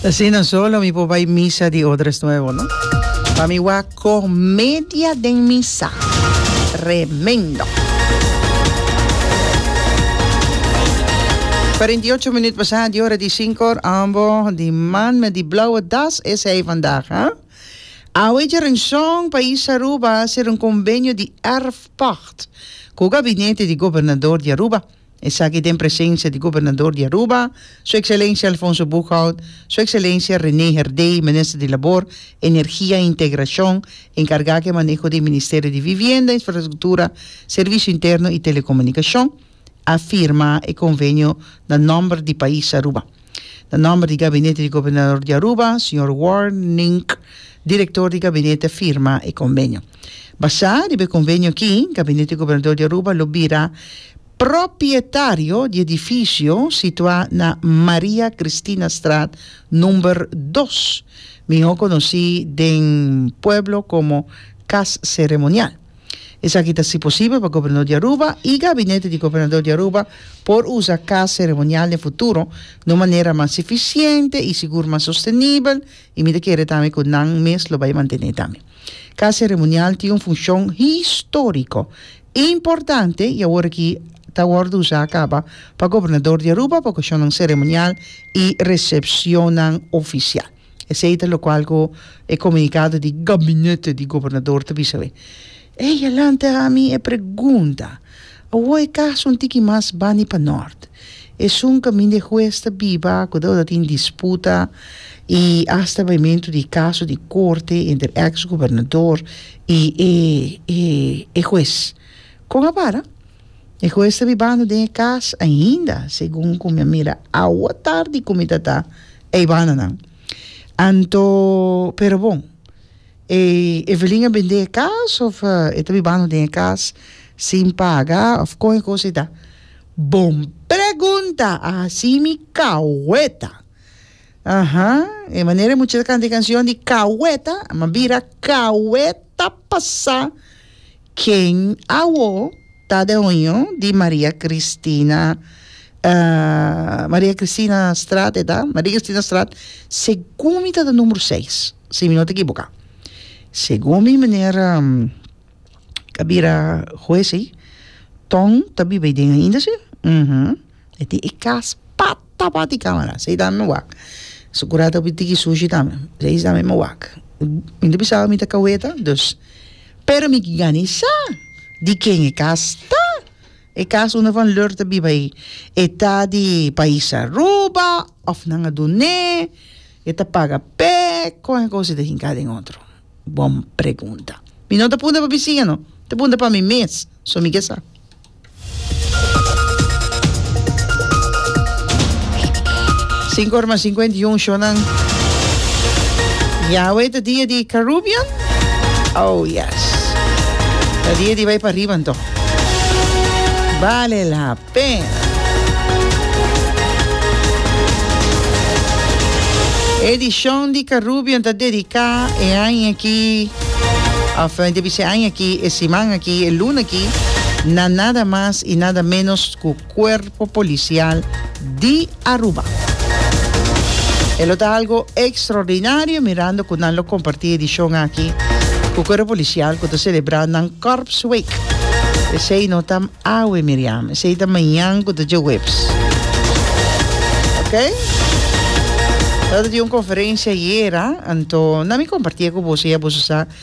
Asina so lo mi por bai misa di Odres Nuevo, no? Pa mi wak comedia den misa. Tremendo. Cuarenta y ocho minuut pasa di ora di cinco. Ambo di man met di blauwe das es hij vandaag, hè? Awe dje renzon pais Aruba ser un convenio di erfpacht cu gabinete di gobernador di Aruba. Esaki den presensia di Gobernador di Aruba, Su Ekselencia Alfonso Boekhout, Su Ekselencia Rene Herdey, Minister di Labor, Energia i Integracion, enkargá ke maneho den Ministerio di Vivienda, Infrastruktura, Servisio Interno i Telekomunikacion, a firma e konvenio na nòmber di pais Aruba. Na nòmber di Gabinete di Gobernador di Aruba, señor Warnink, Director di Gabinete firma e convenio. Basá riba e convenio akí, Gabinete di Gobernador di Aruba lo bira propietario di edificio situá na Maria Kristinastraat number dos, mihó conocí den pueblo como Kas Ceremonial. Esaki ta si posibel pa Gobernador di Aruba y Gabinete di Gobernador di Aruba por usa Cas Ceremonial den futuro na un manera mas eficiente y sigur mas sostenibel y mi ta kere tambe cu nan mes lo bay mantene tambe. Cas Ceremonial tin un funcion historico importante y awor aki ta wordo usa caba pa Gobernador di Aruba pa ocacionnan ceremonial y recepcionnan oficial. Esei ta lokual ku e komunikado di gabinete di gobernador ta bisa awor. Ey a lanta ami e pregunta, Awo e kaso un tiki mas bani pa nort. Esun kaminda e hues ta biba, kuda ora tin disputa i asta baimentu di kaso di korte entre eks gobernador i e hues. Kon a para? E hues ta bibando den e cas ainda, segun cu mi a mira awatardi cu mi ta ta e banda nan. Anto, pero bon, e Evelyn a bende e cas of e ta bibando den e cas sin paga of con e cosa e ta? Bon pregunta! Asi mi caweta! Aha, e manera e muchacha ta canta e cancion di caweta, a bira caweta pasa. Ken awo ta den hoño di Maria Cristina Maria Cristina Straat eta? Maria Cristina Straat segun mi ta den numero seis si mi no ta ekiboka segun mi meneer a bira hues ey Ton ta biba ey den ainda si? E tin e kas pat tapa di camera sei tambe mi wak su cura ta tiki sushi tambe sei tambe mi wak mi ta bisa mi ta caweta dus pero mi gani sa di ken e kas ta e kas unda van leur ta biba ayi e ta di pais Aruba of nan a dune e ta paga pek con e cosita hinca den otro Bon pregunta. Mi no ta punta pa bisiña no, ta punta pa mi mes, so mi ke sa. Sinku ora mas sinkuenta i un shonnan. Ya awey ta dia di Carubbean? Oh yes. Ta dia di bay pa riba anto. Vale la Ten. Edishon di Karubian ta dediká e aña aki, òf debí di se aña aki, e siman aki, e luna aki, na nada mas i nada ménos ku Kuerpo Polisial di. Aruba. E lo ta algo extraordinario mirando cu nan lo comparti edicion aki cu Cuerpo Policial cu ta celebra nan Corps Week. Esey no ta awe Miriam, esey ta mañan cu ta djeweps. Ok? Lo ta tin un conferencia ayera, anto nan mi comparti cu boso y a boso sa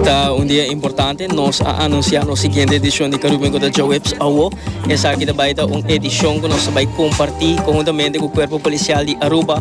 Ta un dia importante, nos a anuncia nos siguiente edicion di Caribbean Got a Jawebs awo. Esaki ta bay ta un edicion cu nos ta bay comparti conjuntamente cu Cuerpo Policial di Aruba.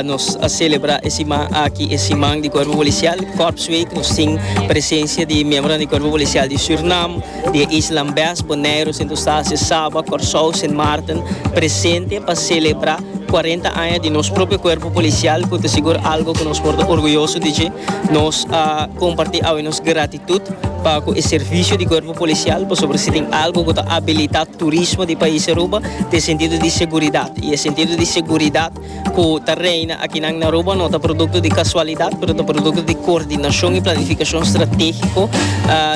Nos a celebra e siman aki e siman di Cuerpo Policial, Corpsweek. Nos tin presencia di miembronan di Cuerpo Policial di Surinam, di e isla Ambes, Bonaire, Sint Eustatius, Saba, Corsou, Sint Maarten presente pa celebra. Cuarenta aña di nos propio cuerpo policial cu ta sigur algo cu nos por ta orguyoso di dje. Nos a comparti awe nos gratitud pa cu e servicio di cuerpo policial pasobra si tin algo cu ta abilita turismo di pais Aruba ta e sentido di seguridad y e sentido di seguridad cu ta reina akinan na Aruba no ta producto di casualidad pero ta producto di coordinacion y planificacion strategico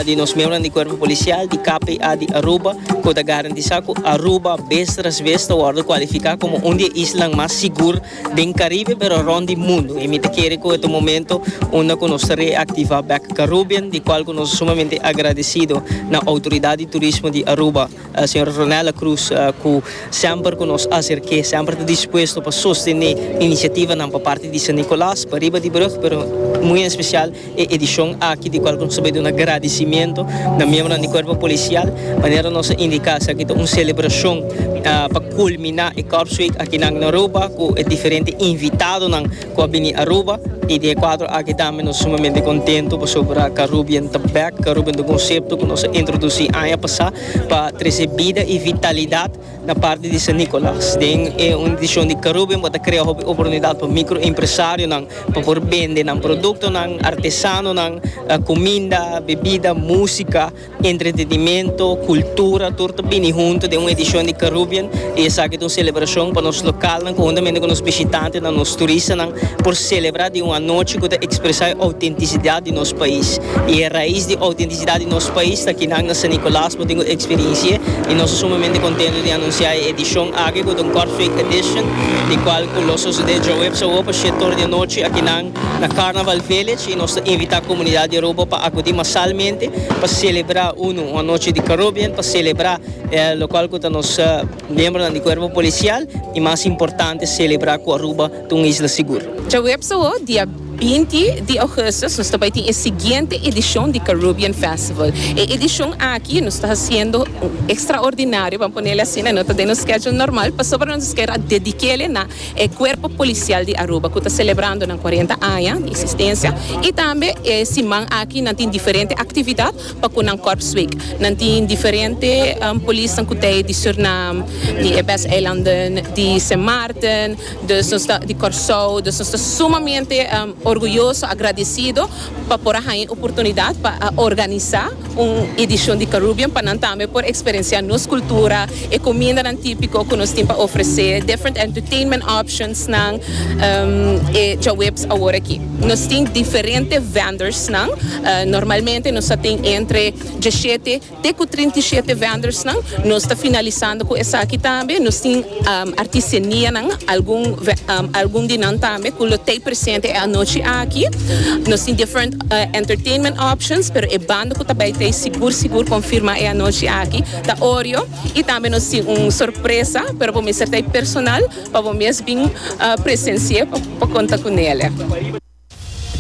di nos membronan di cuerpo policial di KPA di Aruba cu ta garantiza Di sa cu Aruba bes tras bes ta wordo cualifica como un di e islan mas sigur den Caribe pero rond di mundo y mi ta kere cu e ta un momento unda cu nos ta reactiva bek Carubbean di cual cu nos ta sumamente agradecido na Autoridad di Turismo di Aruba Señora Ronella Cruz cu semper cu nos acerke semper ta dispuesto pa sostene iniciativanan pa parti di San Nicolas pa riba di brug pero muy en especial E edishon aki di kual nos ta bai duna gradisimentu na miembronan di kuerpo polisial, manera nos a indiká esaki ta un selebrashon pa kulminá e Corps Week akinan na Aruba ku e diferente invitadonan ku a bini Aruba. I den e kuadro aki tambe nos sumamente kontentu pasobra Carubien ta bèk. Carubien ta un konsepto ku nos a introdusí aña pasá pa trese bida i vitalidat. Na parti di San Nicolas den e un edishon di Carubem bo ta krea hopi oportunidat pa mikro empresarionan pa por bende nan produktonan, artesanonan, kuminda, bebida, músika, entretenimentu, kultura, tur ta bini huntu den un edishon di Carubem i esaki ta un selebrashon pa nos lokalnan konhuntamente ku nos bishitantenan, nos turistanan por selebrá di un anochi ku ta ekspresá e outentisidat di nos pais i e rais di outentisidat. Siudad di nos pais ta kinak na San Nicolas bo tin ku eksperensie i nos ta sumamente kontento di anunsiá e edishon aki ku ta un Kortrijk Edition di kual ku lo sosodé djoweps awor pa shete ora di anochi akinan na Carnaval Village i nos ta invitá komunidat di Aruba pa akudí masalmente pa selebrá unu un anochi di Carubbean pa selebrá lokual ku ta nos miembronan di kuerpo polisial i mas importante selebrá ku Aruba ta un isla sigur. Djaweps awo, dia binti di ougustus, nos ta bai tin e siguiente edishon di Carubbean Festival. E edishon aki nos ta hasiendo un ekstraordinario, ban ponele asina, no ta den nos schedule normal, pasobra nos a kere a dedik'e na e Kuerpo Polisial di Aruba ku ta selebrando nan kuarenta aña di eksistensia i tambe e siman aki nan tin diferente aktividat pa ku nan kòrp sweek. Nan tin diferente polisnan ku ta e di Surinam, di e Best Eilandenn, di Sint Maarten. Dus nos ta di Kòrsou, dus nos ta sumamente orguyoso, agradisido pa por a haña e oportunidat pa a organisá un edishon di Carúbien pa nan tambe por eksperensiá nos kultura, e kumindanan típiko ku nos tin pa ofresé, different entertainment optionsnan. E djaweps awor aki nos tin diferente vendors nan, normalmente nos a tin entre dieshete, Te ku trinta i shete vendors-nan nos ta finalisando ku esaki tambe. Nos tin artisanianan, algun algun di nan tambe ku lo ta ei presente e anochi aki. Nos tin different entertainment options, pero e banda ku ta bai ta ei sigur sigur konfirmá e anochi aki ta Oreo. I tambe nos tin un sorpresa, pero por mester ta ei personal pa bo mes bin presensi'é pa konta ku Nele.